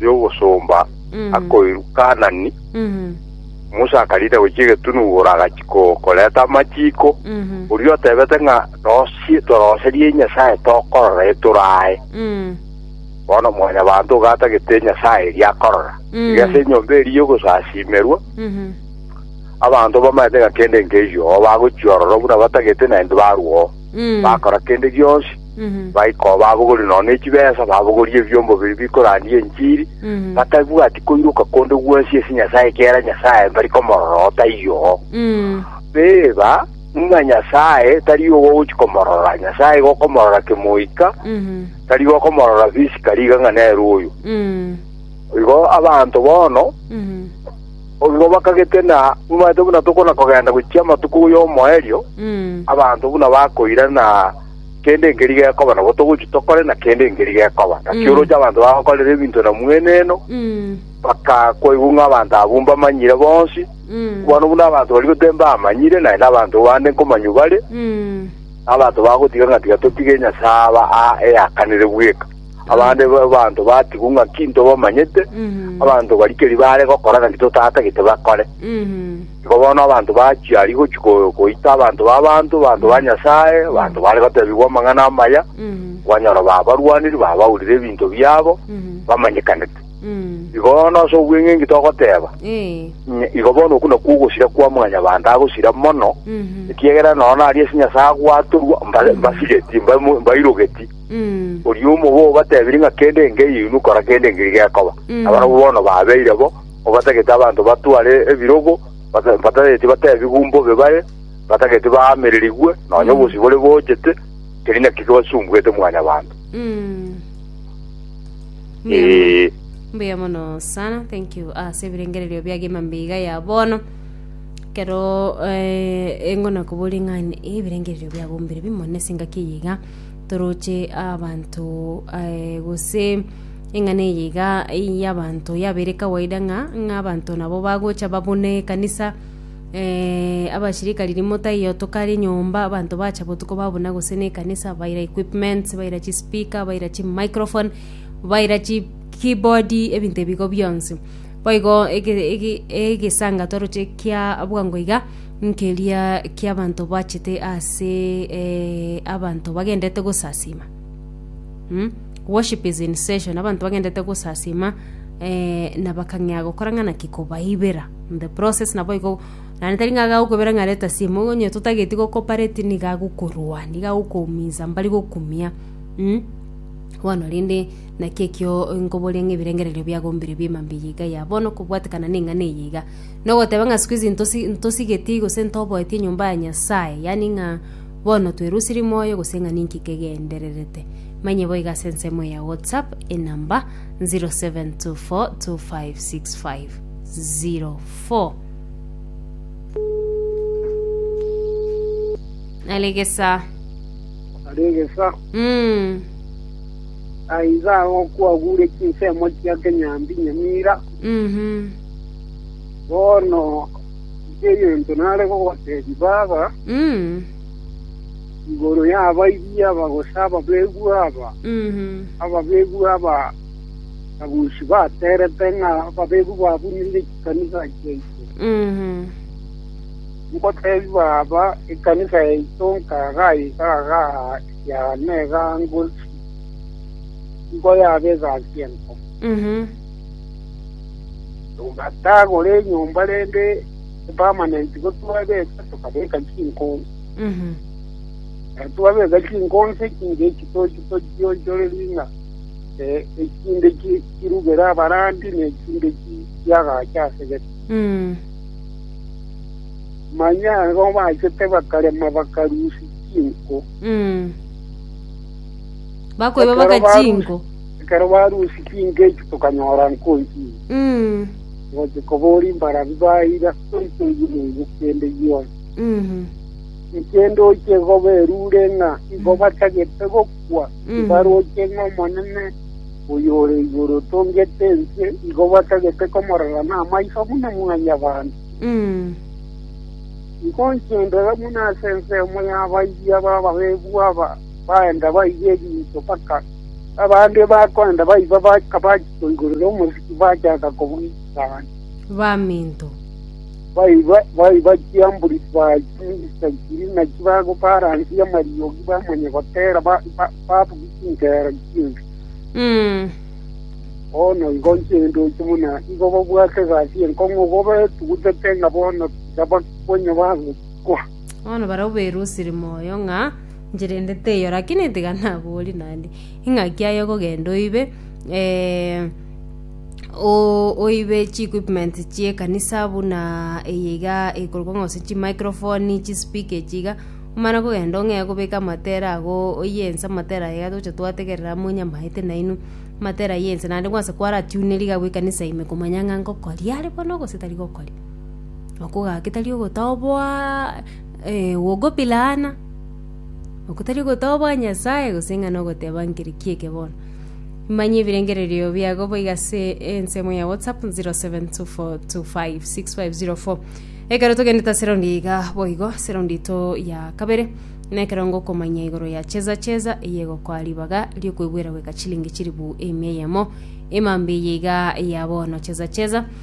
y'ogosomba akoirwa Kaanani, Musa akariina gochia egetunu igoro agachia koreta amachiiko, oria otebete ng'a nosie toroserie Nyasae tokorora etoro aye. Bono Mwanyabaanto iga atagete Nyasae eria akorora, iga ase enyomba eria y'ogosasimerwa abanto bamaete ng'a kende nkeiyo oo bagochia ororo buna batagete naende barwa oo. bakora kende gionsi, baika oo babogoria nonya ne chibesa, babogoria ebiombo biria bikorandia enchiri, batabwati koiroka konde gwonsi ase Nyasae ekiagera Nyasae mbari komorora oo taiyo oo. Teba ng'a Nyasae tari obo ogochia komorora, Nyasae igo okomorora kemoika, tari gokomorora physically iga ng'a nere oyo. Igo abanto bono Obibo bakagete na mobaete buna tokona kogenda gochia amatuko y'omoerio, abanto buna bakoira na kende nkeri gekoba, nabo togochia tokore na kende nkeri gekoba. Naki oroche abanto bagokorera ebinto na mweneno, bakakoigwa ng'a abanto abwo mbamanyire bonsi. Bono buna abanto baria totembamanyire, naende abanto bande nkomanywa bare, abanto bagotiga ng'a tiga totige Nyasae aba aa eyakanire bweka. Abande b'abanto batigwa ng'aki ntobamanyete, abanto baria keri baare gokora ng'aki totatagete bakore. Igo bono abanto bachia aria gochia ko- koita abanto b'abanto, abanto ba Nyasae, abanto baare gotebigwa amang'ana amaya, kwanyora babarwaniri, babaurire ebinto biabo, bamanyekanete. Igo bono ase obweng'e inki togoteba? Ee. Nye- igo bono okwo nakwo ogosira kwa mwanyabanto agosira mono ekiagera nonya nari ase nyasae agwatorwa mba- mbasireti mba- mbairogeti Oria omobe obatebirie ng'a kende engiya inwe kora kende engiya gekoba. Nabarabwo bono babeire bo, obatagete abanto batware ebirogo, bata- batageti batebigwe mbobe bare, batageti baamererigwe, nonya obosibore bochete, teri naki kebasumbuete Mwanyabanto. Mbuya mono. Ee. mbuya mono sana thank you ase ebirengererio biagima mbiga ya bono kero eh, engona koboria ng'a ebirengererio biago mbire bimo nase engaki eye iga toroche abanto eh, gose eng'ana eye iga y'abanto yabeire kawaida ng'a ng'a abanto nabo bagocha babune ekanisa eh, abashirika ririmo taiyo tokare nyomba abanto bacha botuko babuna gose na ekanisa baira equipments baira chispeaker baira chimicrophone baira chi keyboard ebinto ebigo bionsi Boigo egesaanga twaroche kia bwango iga nkeria ki'abanto bachete ase abanto bagendete gosasima. Worship is in session, abanto bagendete gosasima na bakang'ea gokora ng'a naki kobaibera. In the process naboigo naende tari ng'a agagokwebera ng'a reta simu, igo onye totageti go cooperate nigo agokorwa, nigo agokominsa mbari gokumia, bono rende. Naki ekio nkoboria ng'a ebirengererio biagombire bi'ema mbiya iga ya bono kobwatekana neng'ana eye iga, nogoteba ng'a siku hizi ntosi- ntosigetie gose ntoboetie enyomba ya Nyasae, yaani ng'a bono twerusirie moyo gose ng'a ninki kegendererete. Manye boiga ase ensemo eye ya WhatsApp enamba 0724256504. Nare egesaa. Nare egesaa. Mm. Aye iga agwo kwagure chinsemo chia kenyambi nyamira, bono inche egento nare gogotebia baba igoro y'abaibia aba gose ababegwa aba, ababegwa aba naboichi baterete ng'a ababegwa babunire chikanisa chiaito. Nkotebie baba, ekanisa yaito nkaga aye iga agaa. ya Negangusi, nkoyabegasie enko. Togatagora enyomba rende epermanent igo twabeka tokabeka chinkonsi. Ekero twabeka chinkonsi echinde echi tochi tochionchorerie ng'a eh, echinde chi- chirugere abarandi na echinde chi- chiagache ase gete. Manya igo bachete bakarema bakarusia chinko. Mm. Bakoiba Ekero baka barusi- chinko. Ekero barusi chinko echi tokanyora nkonchiri. Mm. Gocha kobori mbarabi baira toito yimeigo kende yonsi. Mhm. Ekende oche goberure ng'a igo batagete gokwa Mhm. ibaroche ng'omonene oyore igoro tongete ense igo batagete komorora namaiso buna mwanyabanto. Mm. Inkonchia ondore buna ase ensemo y'abayia b'abareebu aba baenda baiba ebinto mpaka abande bakoenda baiba baka bakoigorera omosiki bachaka kobwechana. Baminto. Baiba baiba chiambori chibao chimisa chiri na chibago baransie amariogi bamanye gotera babuge chingero chi'ense. Bono inkonchia endoche buna igo babwate egasi enkong'u igo betugutete ng'a bono nabakonye bagokwa. Bono barabwo bairusire moyo ng'a nchirende teiyo, lakini tiga nabori naende, ing'aki aye okogenda oibe eh, o- oibe chi equipment chie ekanisa buna eye iga eikorokwa ng'a gose chimicrophone chispeaker echi iga omana kogenda ong'ee kobeka amatera ago oyie ense amatera aye iga togocha twategerera amo nyamaete nainwe amatera ayio ense naende kwansa kwaratiune rigabu ekanisa ime komanya ng'a ngokoria are bono gose tari gokoria. Okogaaka tari ogotoboa gokopiraana, oko tari ogotoboa Nyasae gose ng'a nogoteba nkeri ki eke bono. Manye ebirengererio biago boigo ase ensemo ya WhatsApp 0724256504. Ekero togendete ase raundi iga boigo ase raundi to ya kabere na ekero ngokomanya igoro ya cheza cheza eye egokoa ribaga riokoigwera goika chilingi chilifu emia eyemo emambia eye iga ya bono cheza cheza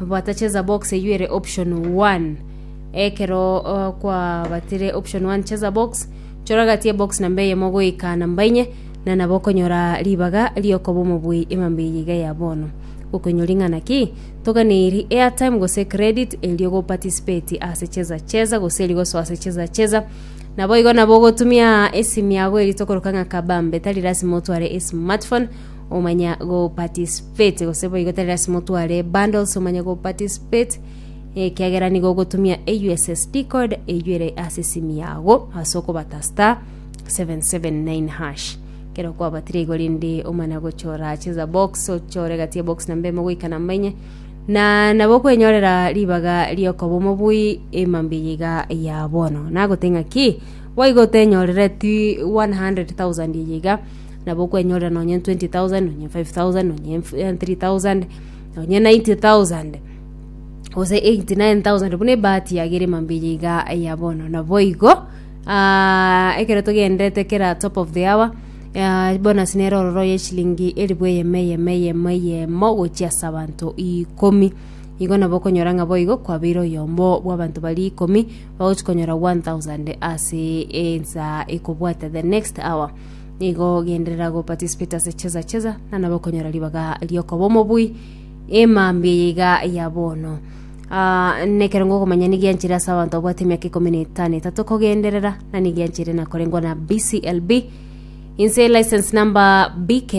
Bwatacheza box eyio ere option one. Ekero uh, kwabatire option one cheza box choragatie box namba eyemo goika namba inye na nabo okonyora ribaga riokoba omobwei emambe eye iga ya bono gokonyori ng'ana ki toganeiri airtime gose credit erio go participate ase cheza cheza gose erio gosoa ase cheza cheza nabo igo nabo ogotumia esimi yago eri tokoroka ng'a kabambe tari lasima otware esmartphone omanya go participate gose boigo tari lasima otware bundles omanya go participate ekiagera nigo ogotumia USSD code eywo ere ase esimi yago ase okobata star 779 hash kero kwabatire igo rende omana gochora cheza box ochore gati ya box namba emo goika namba enye na nabo okwenyorera ribaga riokoba omobui emambe yiga ya bono nagoteng'a ki boigo otenyorereti 100,000 yiga nabo okwenyorera nonye 20,000 nonye 5,000 nonye 3,000 nonye 90,000 gose 89,000 buna ebahati yago ere mambia iga ya bono naboigo aa ekero togenderete kera top of the hour aa bonus nere ororo ya eshilingi elifu eyemo eyemo eyemo eyemo gochia ase abanto ikomi igo nabo okonyora ng'a boigo kwabeire oyomo bwa abanto baria ikomi bagochi konyora 1,000 ase ensa ekobwate the next hour. nigo ogenderera go participate ase cheza cheza na nabo okonyora ribaga riokoba omobui emambia eye iga ya bono Ah, nekero ngokomanya nigianchire ase abanto babwate emiaka ikomi na etano etato kogenderera na nigianchire nakorengwa na bclb inse license number bk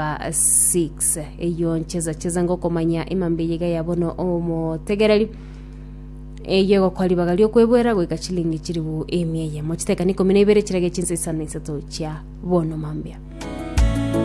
0000856 eyo ncheza cheza ngokomanya emambia eye iga ya bono omotegereri Eyio egokwa ribaga ri'okweboera goika chilingi chilifu emia eyemo. Chiteka na ikomi na ibere chirage chinsa isano na isato chia bono mambia.